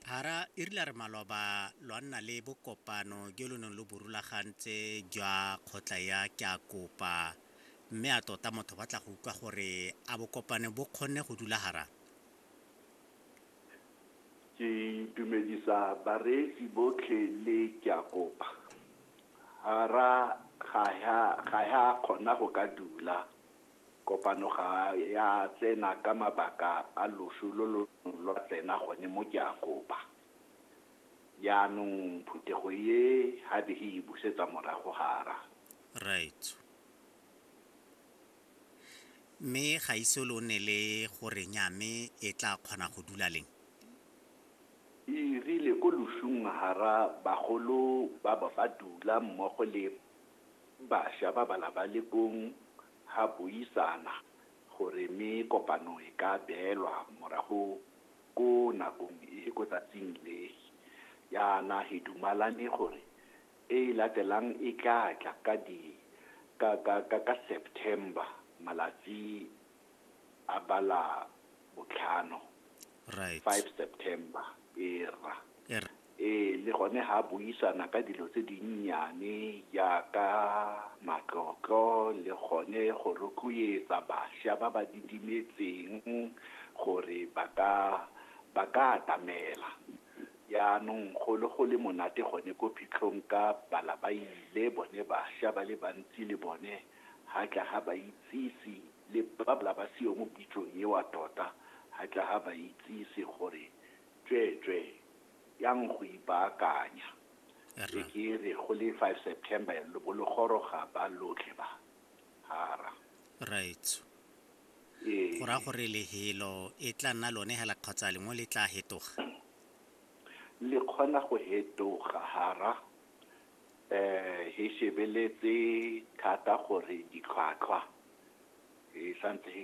Hara e rile a re maloba lwa nna le bokopano jo lo neng lo bo rulagantse jwa kgotla ya Ke a Kopa mme a tota motho ba tla go utlwa gore a bokopane bo kgonne go dula hara Ke itumedisa bareetsi botlhe le Ke a Kopa. Hara ga ya kgona go ka dula. Kopano ga ya tsena ka mabaka a loso lo lo neng lwa tsena gone mo Keakopa. Jaanong phuthego e ha be e e busetsa morago hara. Right. Mme ga ise lo nne le go re nya mme e tla kgona go dula leng? E rile ko losong hara bagolo ba ba ba dula mmogo le. Basha ba ba labalekong ha buisana gore me kopano e ka beelwa morago ko nakong e ko tsatsing le. Yana he dumalane gore e latelang e tla tla ka di ka ka ka ka September malatsi a ba la botlhano, Right. five September, era. Era. Ee, le gone ga a buisana ka dilo tse dinnyane jaaka matlotlo le gone go rotloetsa bašwa ba ba didimetseng gore ba ka ba ka atamela. Jaanong go le go le monate gone ko phitlhong ka bala ba ile bone bašwa ba le bantsi le bone ga tla ga ba itsise le ba bala ba seyo mo pitsong eo tota ga tla ga ba itsise gore tsweetswee yang go ipaakanya e ke re go le five september ya lo bo lo goroga ba lotlhe ba hara right ee go raya gore lehelo e tla nna lone hela kgotsa lengwe le tla hetoga le kgona go hetoga hara eh he shebeletse thata gore ditlhwatlhwa e santse he